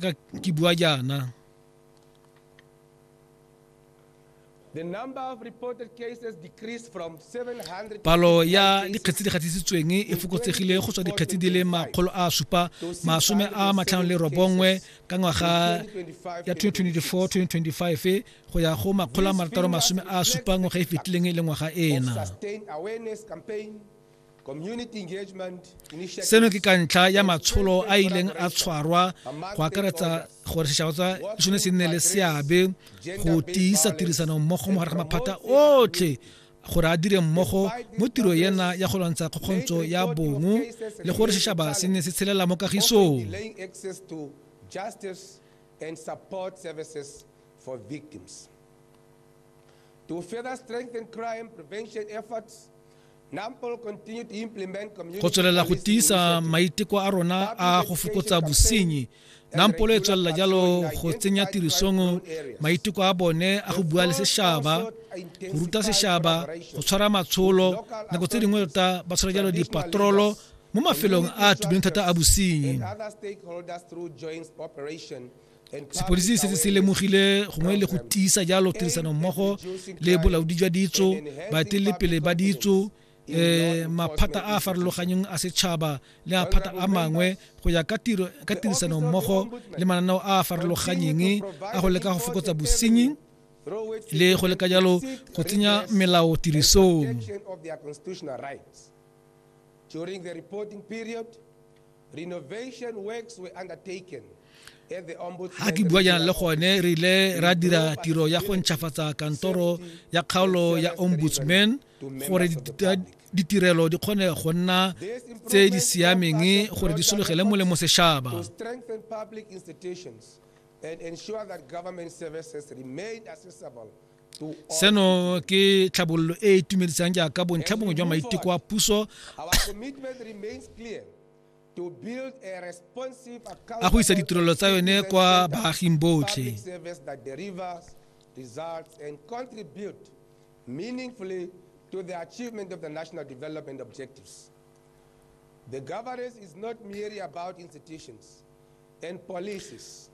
ka ke bua jaana The number of reported cases decreased from 700 palo ya dikgetsi di gatisitsweng e fokotsegile go tswa dikgetsi di le makgolo a supa masome a matlhano le robongwe ka ngwaga ya 2024-2025 go ya go makgolo a marataro masome a supa ngwaga e fetileng e le ngwaga ena sustained awareness campaign seno ke ka ntlha ya matsholo a ileng a tshwarwa go akaretsa gore setšhaba tsa sone se nne le seabe go tiisa tirisano mmogo mo gare ga maphata otlhe gore a dire mmogo mo tiro ena ya go lwantsha kgokgontsho ya bongo le gore setšhaba se nne se tshelela mo kagisong and support services for victims. To further strengthen crime prevention efforts, go tswelela go tiisa maiteko a rona a go fokotsa bosenyi nampolo e tswelela jalo go tsenya tirisong maiteko a bone a go bua le sešaba go ruta sešaba go tshwara matsholo nako tse dingwe tota ba tshwara jalo dipatrolo mo mafelong a a thata a bosenyi sepodisi se se lemogile gongwe le go tiisa jalo tirisano mmogo le bolaodi jwa ditso baetelepele ba ditso eh maphata a farologanyeng a setšhaba le a phata a mangwe go ya ka tiro ka tirisano mmogo le mananeo a farologanyeng a go leka go fokotsa bosenyi le go leka jalo go tsenya melao tirisong ga ke bua jaana le gone re ile ra dira tiro ya go ntšhafatsa kantoro ya kgaolo ya ombudsman gore ditirelo di kgone go nna tse di siameng gore di sologele molemo sešaba and ensure that government services remain accessible seno ke tlhabololo e e itumedisang jaaka bontlha bongwe jwa maiteko a puso a go isa ditirelo tsa yone kwa baaging botlhe meaningfully to the achievement of the national development objectives. The governance is not merely about institutions and policies.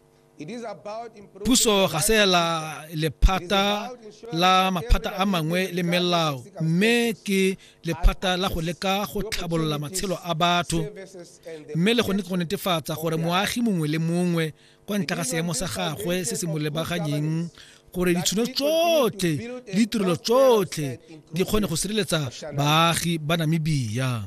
Puso ga se la lephata la maphata a mangwe le melao mme ke lephata la go leka go tlhabolola matshelo a batho mme le gone go netefatsa gore moagi mongwe le mongwe kwa ntle ga seemo sa gagwe se se mo lebaganyeng gore ditšhono tsotlhe le ditirelo tsotlhe di kgone go sireletsa baagi ba namibia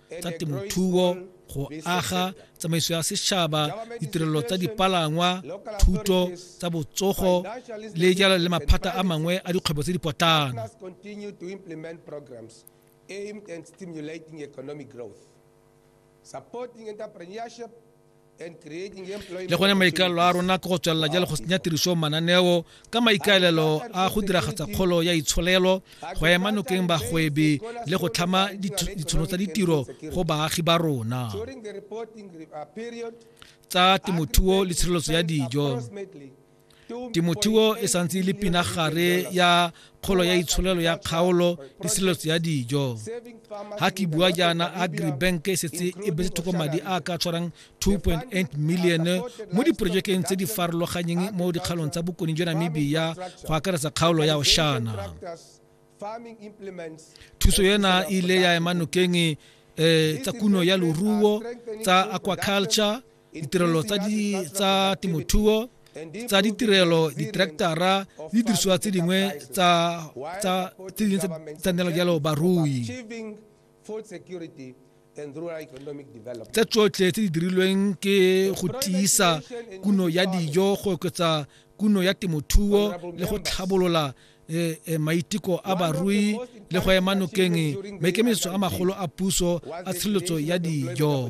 tsa temothuo go aga tsamaiso ya setšhaba ditirelo tsa dipalangwa thuto tsa botsogo le jalo le maphata a mangwe a dikgwebo tse di potlana aimed at stimulating economic growth, supporting entrepreneurship le gone maikalelo a rona ke go tswelela jalo go senya tiriso mananeo ka maikaelelo a go diragatsa kgolo ya itsholelo go ema nokeng bagwebi le go tlhama ditshono tsa ditiro go baagi ba rona tsa temothuo le tshireletso ya dijo temothuo e santse e le pinagare ya kgolo ya itsholelo ya kgaolo le sireletso ya dijo ga ke bua jaana agribank e setse e betse thoko madi a ka tshwarang 2.8 million mo diporojekeng tse di farologanyeng mo dikgalong tsa bokone jwa namibia go akaretsa kgaolo ya oshana thuso ena e ile ya ema nokeng um tsa kuno ya loruo tsa aquaculture ditirelo tsa temothuo tsa ditirelo diterektara le didirisiwa tse dingwe tsa tsanela jalo barui tse tsotlhe tse di dirilweng ke go tiisa kuno ya dijo go oketsa kuno ya temothuo le go tlhabolola Eh, eh, maiteko a barui le go ema nokeng maikemisetso a magolo a puso a tshireletso ya dijo